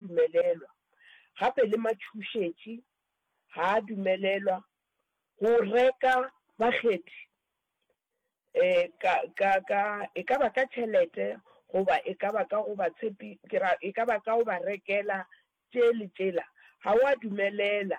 Dumelelwa. Gape le matšhošetši ga a dumelelwa go reka bakgethi, e ka, ka, ka, e ka ba ka tšhelete goba e ka ba ka go ba tshepi, ke ra, e ka ba ka go ba rekela tše le tšela, ga o a dumelela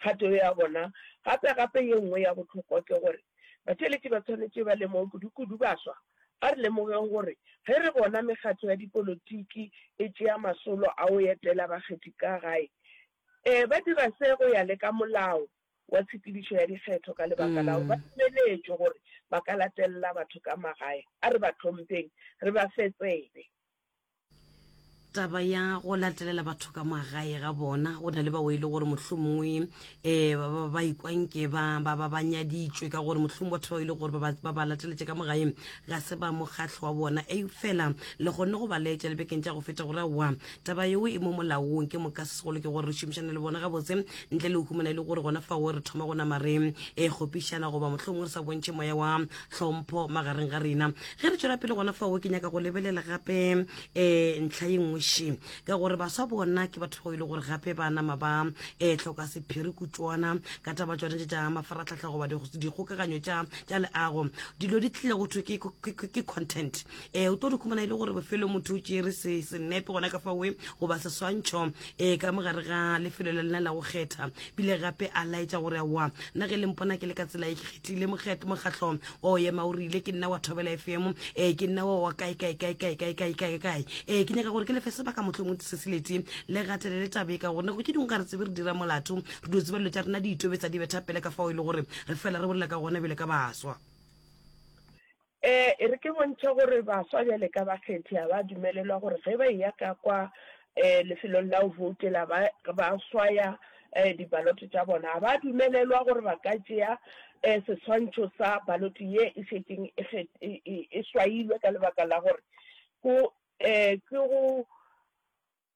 Kgato ya bona gape-gape ye nngwe ya bohlokwa ke gore batheeletši ba swanetše ba lemoge kudu-kudu baswa. A re lemogeng gore ge re bona mekgatlo ya dipolotiki e tšea masolo a go etela bakgethi ka gae, ee, ba dira se go ya le ka molao wa tshepedišo ya dikgetho ka lebaka la gore ba dumeletšwe gore ba ka latelela batho ka magae. A re ba hlompheng, re ba fe tsebe. taba ya go latelela batho ka magae ga bona go na le bao e le gore mohlomongwe um eh, ba ikwanke ba nyaditšwe ka gore mohlomong batho bao e le gore ba ba lateletse ka mogaeng ga se ba mokgatlho wa bona e fela le kgonne go ba leetša lebekeng tša go feta gore wa taba yeo e mo molaong ke moka se segolo ke gore re šomišane le bona gabotse ntle le go humana e le gore gona fao re thoma go nama re e kgopišana goba mohlomongwe re sa bontšhe moya wa tlhompho magareng ga rena ge re tswela pele gona fao ke nyaka go lebelela gape um ntlha ye nngwe she ka gore baswa bona ke batho bao e le gore gape ba nama ba um eh, tlhoka sephiri kutswana ka taba tsone tse tša mafaratlhatlha goba dikgokaganyo tša leago dilo di tlile go thwe ke content um o tlo di khumana e le gore bofelo motho o tšere senepe gona ka fawe goba seswantšho um eh, ka mogare ga lefelo la lena la go kgetha bile gape a laetša gore aowa nna ge lempona ke le ka tsela e ke kgethile mokgatlho wa o ema o rile ke nna wa thobela efemo um eh, ke nna wa wa kae kae kae kae kae kae kae kae um ke nyaka gore ke lefe sebaka motlho mo diseseleti le gatele le tabe ka gore nako ke dingwe ga re tsebe re dira molato re dio tseba dilo tša rena di itobetsa di betha pele ka fao e le gore re fela re bolela ka gona bjale ka baswa Ee, e re ke bontšhe gore baswa bjale ka bakgethi ga ba dumelelwa gore ge ba eya ka kwa um lefelong la go voutela ba ba swaya um dibaloto tša bona, ga ba dumelelwa gore ba ka tšea um seswantšho sa baloto ye e šetšeng e e, e, e swailwe ka lebaka la gore go um ke go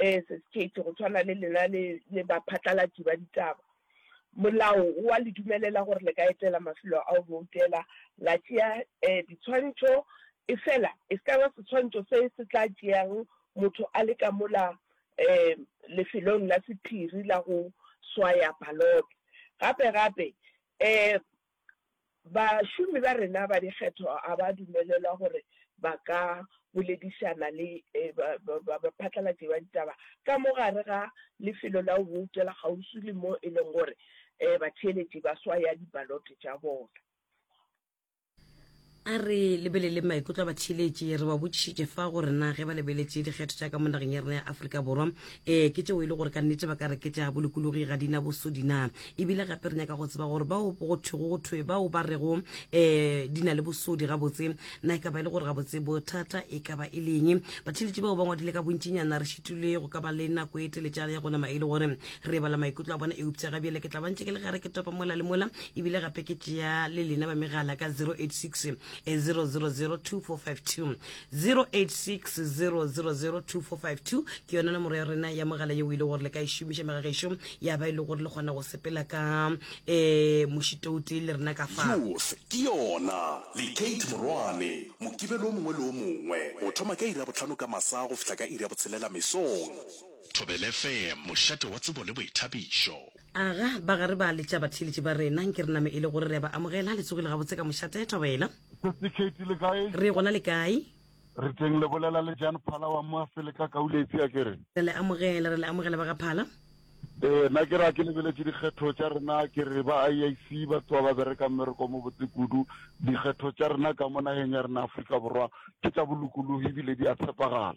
Ee, Sesi Kate, go tshwana le lena le, le baphatlalatši ba ditaba, molao o a le dumelela gore le ka etela mafelo a go boutela, la tšea eh, diswantšho, efela e se ka ba seswantšho se se tla tšeago motho a le ka mola eh, lefelong la sephiri la go swaya balote. Gape-gape, eh, Bašomi ba rena ba dikgetho ga ba dumelelwa gore ba ka boledišana le baphatlalatši ba ditaba ka mo gare ga lefelo la go boutela kgauswi le mo e lego gore batheeletši ba swaya dibalote tša bona. A re lebelele maikutlo a batšhiletši. Re ba botšišitše fa gore na ge ba lebeletše dikgetho tša ka mo nageng ya rena ya Afrika Borwa, ee ke tšeo e le gore ka nnete ba ka re ke tša bolokologi ga di na bosodi na. E bile gape re nyaka go tseba gore bao go thwego go thwe bao ba rego um di na le bosodi gabotse na e ka ba e le gore gabotse bothata e ka ba e leng. Batšhiletši bao ba ngwadile ka bontšinyana re šitilwe go ka ba le nako e teletšana ya go nama e le gore re bala maikutlo a bona eupša gabjale ke tla ba ntše ke le gare ke topa mola le mola ebile gape ke tšea le lena ba megala ka 086 0002452086 00024520 ke yona nomoro ya rena ya mogala yeo e le gore le ka e šomiša megagešo ya ba e le gore le kgona go sepela ka um eh, mošitoute le rena ka fa Youth ke yona le Kate Morwane mokibelo o mongwe le o mongwe go thoma ka iri ya botlhano ka masa go fihla ka iri ya botshelela mesong. Thobelefm, mošate wa tsebo le boithabišo. Aga, ba ga re ba letša batheeletši ba rena, nke re name e le gore re a ba amogela. Le tsogile gabotse ka mošate, e thobela. Sesi Kate, le kae? Re gona le kae? Re teng, le bolela le Jan Phala wa mo Afele ka Kauletsi, a ke re? Re le amogela, re le amogela ba ga Phala. Ee, na ke re a ke lebeletše dikgetho tša rena, a ke re ba IIC ba tloa ba bereka mmereko o mobotse kudu. Dikgetho tša rena ka mo nageng ya rena Afrika Borwa ke tša bolokologi ebile di a tshepagala.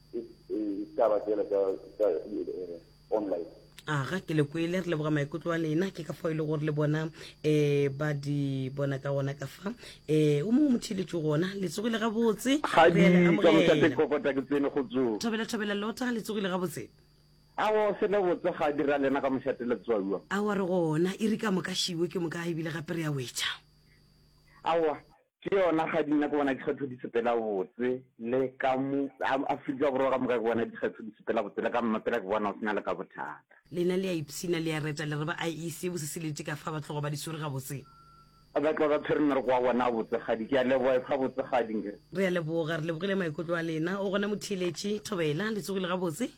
ditaba tsela tsa eh, online aga ke le kwele re leboga maikutlo a lena ke ka fao e le gore le bona um ba di bona ka gona ka fa um o mongwe motheletso gona le tsogile gabotse thobela thobela lota le tsogile gabotse awa o sele botse ga dira lena ka mošateletswaua awa re gona e re ka moka šiwe ke moka ebile gape re ya wetšha awa Ke yona ga di nna ke bona dikgetho di sepela botse le ka mo Afrika Borwa ka moka ke bona dikgetho di sepela botse le ka mmapela ke bona o sena le ka bothata. Lena le a ipshina le a reta le re ba IEC bose se lete ka fa ba tloga ba di swere gabotse. Ba tloga ba tshwere mmereko wa bona a botsegadi. Ke a leboga e fa botsegadi. Re a leboga, re lebogile maikutlo a lena. O gona Motheeletši Thobela, le tsogile gabotse.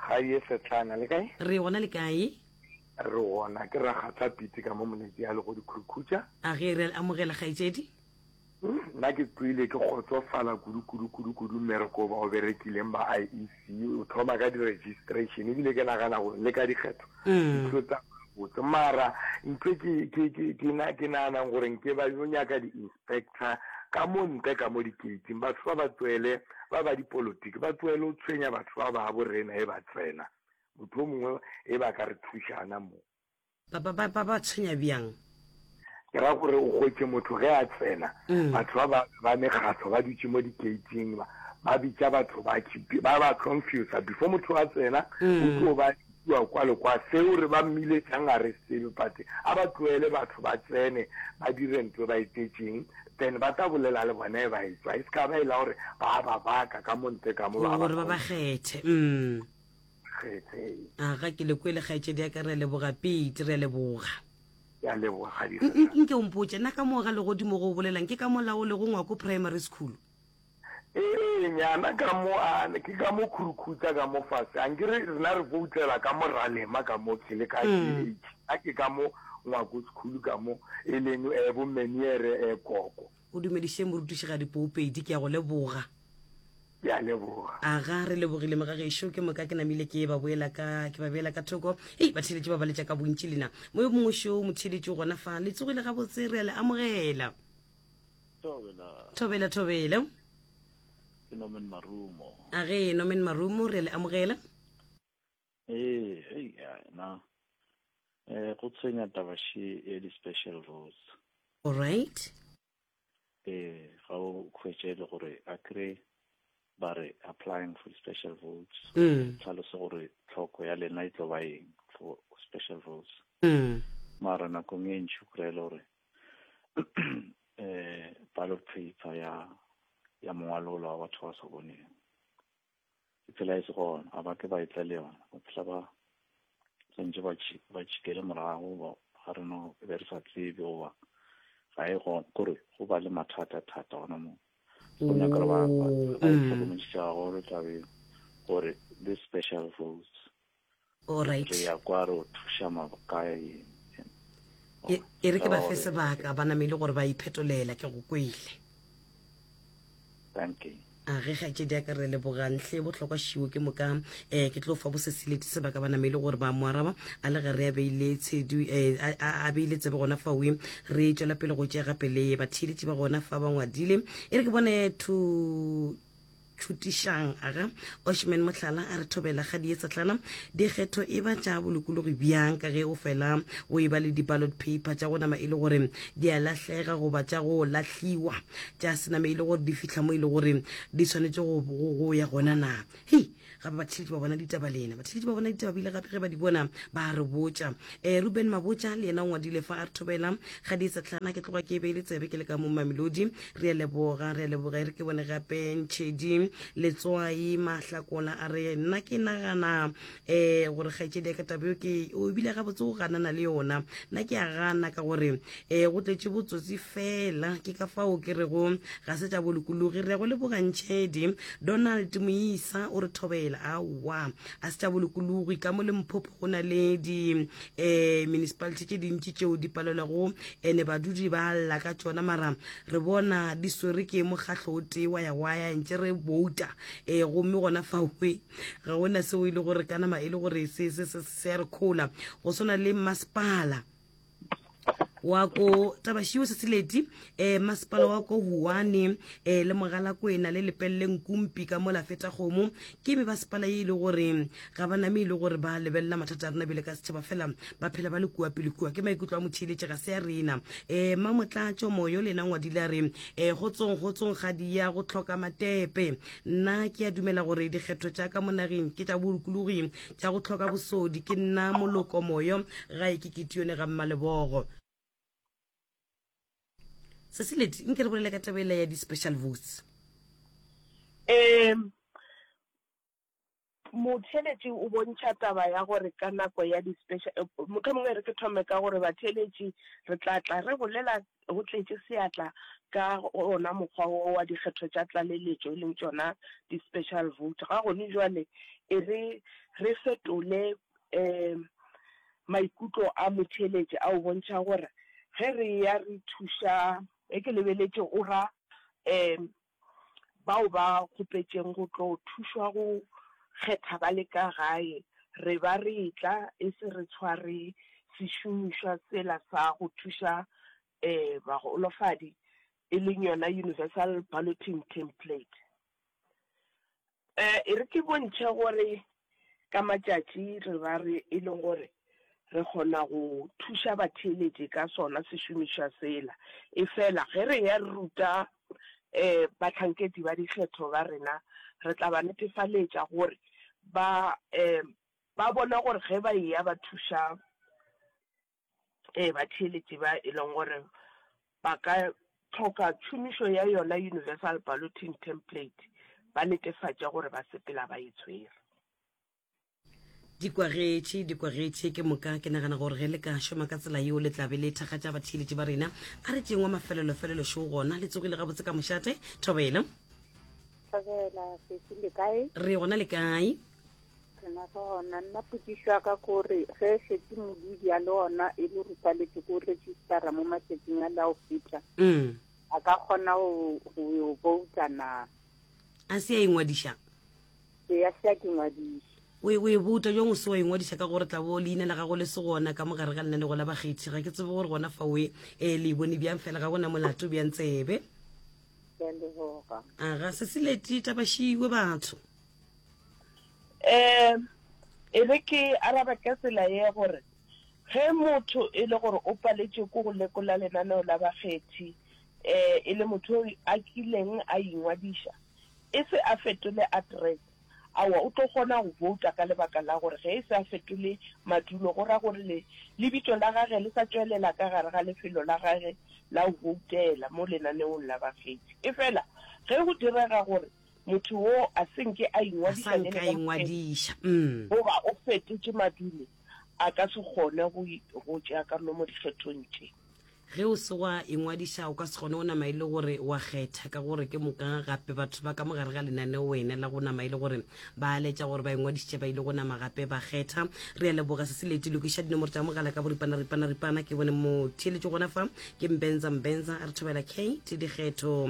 Ga ye Setlana, le kae? Re gona le kae? Re gona, ke rakgatla Piti ka mo monetsi ya legodi Khurukhucha. A ge re amogela kgaetšedi. Nna ke kwele ke kgotsofala kudu kudu kudu kudu mmereko ba o berekileng ba IEC o thoma ka di-registration ebile ke nagana gore le ka dikgetho mm. dilo tsa botse mara ntho ke naganang gore nke ba yo nyaka di-inspector Spectre, ka mo ntle ka mo dikeiting, batho ba ba tsoele, ba ba dipolotiki, ba tsoele go tshwenya batho ba babo rena ge ba tsena. Motho yo mongwe ge ba ka re thuša gana mo. Ba, ba, ba, ba ba tshwenya bjang? Ke ra gore o hwetše motho ge a tsena, batho ba ba, ba mekgahlo ba dutše mo dikeiting, ba, ba bitša batho ba, ba ba confusa. Before motho a tsena, go tlo ba Kua, kua le kua, seo re ba mmile tšang a re sebe, but a ba tloele batho ba tsene ba dire nto e ba etetšeng, then ba tla bolela le bona e ba etšwa, e se ka ba e la gore ba a ba baka ka mo ntle ka mo, ba a ba Gore ba ba kgontha. kgethe. Umm. Kgethe. Aga, ke le kwele kgaetšedi ya ka. Re a leboga, Pete, re a leboga. Ke a leboga, kgadikgatsadi. Nke o mpotše, na ka moo ga legodimo go o bolelang ke ka mo la o lego ngwako primary school? Ee, nyana ka mo a ke ka mo khurukhutsa ka mo fase a nke re rena re voutela ka mo ralema ka mo ke le ka mm. ke a ke ka mo ngwako sekhulu ka mo e leng um eh, bomeniere um eh, koko o dumediše morutišigadi poopedi ke ya go leboga ke a leboga aga re lebogile mo ga gešo ke moka ke namile ke ba boela ka ke ba beela ka thoko ei batheeletše ba baletša ka bontši lena mo yo mongwe šo motheeletše o gona fa le tsogile gabotse re a le amogela Thobela. Thobela, thobela. Ke Norman Marumo. A ge Norman Marumo re le amogela. Ee, hey, na. Eh, go tshwenya taba she e di special rules. All right. Eh, ga o khwetse le gore a kre ba re applying for special rules. Mm. Tlhalosa gore tlhoko ya lena e tlo ba eng for special rules. Mm. Mara nakong e ntšhu kry le gore eh palo tshitsa ya ya mongwalola wa batho ba sa boneng ke tsela e se gona ga ba ke ba etla le yona ba phela ba tsentse ba tšhikele morago ba re no e be re sa tsebe goba ga e gona kore go ba le mathata thata gona moo go nyaka re ba ba tlhokomedisa gore tlabe gore this special votes Alright. Re ya kwa re o thuša mabokae eng? E, e re ke ba fe sebaka ba namele gore ba iphetolela ke go kwele. Thank you. a ge kgaetšedi ya ka re lebogang hle bohlokwa šiwo ke moka um ke tlo fa bosesileti sebaka ba namele gore ba mo araba a le ge re a beile tshedu um a beile tsebe gona fa we re tšwela pele go tšea gape le batheeletši ba gona fa ba ngwadile e re ke bone to tšhutišang aga oshman mohlala a re thobela ga di etsatlana dikgetho e ba tša bolokologi bjang ka ge o fela o e ba le di-ballot paper tša go nama e le gore di a lahlega goba tša go lahliwa tša sename e le gore di fihla mo e le gore di tshwanetše go ya gona na hei gape batheletši ba bona ditaba lena batheletši ba bona ditaba bile gape ge ba di bona ba re botša um eh, ruben mabotša le yena o ngwadile fa a re thobela ga di etsatlana ke tloga ke e be e le tsebe ke le ka mo mamelodi re a leboga re a leboga e re ke bone gape ntšhedi letswai mahlakola a re nna ke nagana um gore kgaetšedi ya ka taba eo ke o ebile gabotse o ganana le yona nna ke a gana ka gore um go tletše botsotsi fela ke ka fao ke rego ga se tša bolokologi re ya go leboga ntšhedi donald moisa o re thobela aowa a se tša bolokologi ka mo le mphopho go na le di um municipality tše dintši tšeo di palelwago Ene badudi ba lla ka tšona mara re bona di swere ke mokgahlo o tee wa ya waya ntše re bouta e eh, gomme gona faoe ga go na seo e le gore ka nama e le gore se se se se ya re khola go swana le masepala wa ko tabashio se seleti um eh, masepala wa ko huane um eh, le mogalakwena le lepelele nkumpi ka mola feta kgomo ke me basepala e e le gore ga ba name e le gore ba lebelela mathata a rena bile ka setšhaba fela ba phela ba le kua pele kua ke maikutlo a motheeletše ga se ya rena um eh, mamotlatso moyo lena ngwadile a re um eh, go tsong go tsong ga diya go tlhoka matepe nna ke a dumela gore dikgetho tša ka mo nageng ke tša bolokologi tša go tlhoka bosodi ke nna moloko moyo ga e ke ketione ga mmalebogo se se leti nke re bolele ka tabela ya di-special votes um Motheeletši o bontšha taba ya gore ka nako ya di special, mohlomongwe e re ke thome ka gore batheeletši re tla tla re bolela go tletše seatla ka ona mokgwa wo wa dikgetho tša tlaleletšo e leng tšona di special vote. Ga gone bjale e re re fetole um maikutlo a motheeletši a o bontšha gore ge re ya re thuša, ge ke lebeletše o ra um bao ba kgopetšeng go tlo thušwa go kgetha ba le ka gae, re ba re etla e se re tshware sešomišwa sela sa go thuša bagolofadi, e leng yona Universal Balloting Template. E re ke bontšhe gore ka matšatši re ra re e le gore re kgona go thuša batheeletši ka sona sešomišwa sela, efela ge re eya re ruta bahlankedi ba dikgetho ba rena, re tla ba netefaletša gore ba bona gore ge ba eya ba thuša e batheeletši ba e leng gore ba ka tlhoka tšhomišo ya yona universal balloting template ba netefatše gore ba sepela ba e tshwere. Di kwagetše, di kwagetše ke moka. Ke nagana gore ge le ka šoma ka tsela yeo le tla be le thakgatša batheeletši ba rena. A re tšeeng wa mafelelofelelo šo gona le tsogile gabotse ka mošate. Thobela. Thobela, Sesi, le kae? Re gona le kae? Gona gona nna potšišo ya ka ke gore ge e šetse modudi a le ona e le rupaletse ko registera mo matšatsing a la o feta mm. a ka kgona go vouta na a se ya ingwadiša ee a se ya ke ngwadiša o e bouta jong o se wa ingwadiša ka gore tla bo leina la gago le se gona ka mogare ga lenanego la bakgethi ga ke tsebe gore gona fa oe um le bone bjang fela ga gona molato bjang tsebe aga se se leti tabašiwe batho um e re ke araba ka tsela ye gore ge motho e le gore o paletše ko go lekola lenaneo la bakgethi um e le motho a kileng a ingwadiša e se a fetole address awa o tlo kgona go vouta ka lebaka la gore ge e se a fetole madulo go ra gore le lebitso la gage le sa tšwelela ka gare ga lefelo la gage la go voutela mo lenaneong la bakgethi e fela ge go direga gore motho wo a se nke a ingwadiša bjale ka ingwadiša mm. goba o fetotše madulo a ka se kgone go tšea karolo mo dikgethong tše ge o se wa ingwadiša o ka se kgone go nama e le gore wa kgetha ka gore ke moka gape batho ba ka mogare ga lenaneo wena la go nama e le gore ba aletša gore ba ingwadišitše ba ile go nama gape ba kgetha re ya leboga se se leti lokiša dinomoro tša mogala ka boripana ripana ripana ke bone mo theeletše gona fa ke mbenza mbenza re thobela kate dikgetho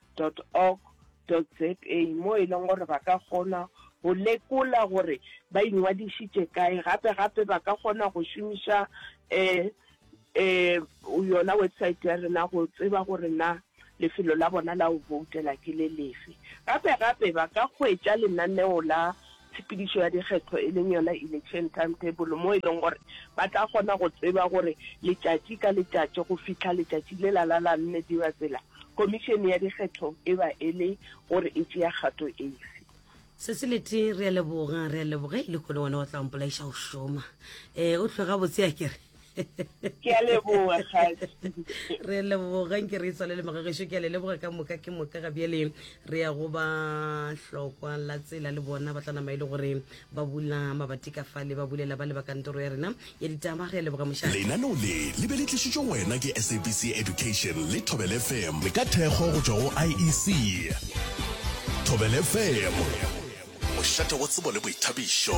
org za moo e leng gore ba ka kgona go lekola gore ba ingwadišitše kae gape gape ba ka kgona go šomiša um um yona website ya rena go tseba gore na lefelo la bona la go voutela ke le lefe gape gape ba ka hwetša lenaneo la tshepedišo ya dikgetho e leng yona election timetable mo e leng gore ba tla kgona go tseba gore letšatši ka letšatši go fihla letšatši le la la la nne di ba tsela Komišene ya Dikgetho e ba e le gore e tšea kgato efe. Se se lete re a leboga re a leboga e le kone wena wa tla mpolaiša go šoma e o tlhoga botse a kere ke a leboga kgadi re leboga nke re tswale le magageso ke a le leboga ka moka ke moka ga bjale re ya go ba hlokwa la tsela le bona ba tla nama e le gore Ba bula mabati ka fale, ba bulela bale ba kantoro ya rena ya ditaba. Re a leboga mošate. Lenaneo le le be le tlišitšwe go wena ke SABC Education le Thobela FM. Le ka thekgo go tšwa go IEC. Thobela FM, mošate wa tsebo le boithabišo.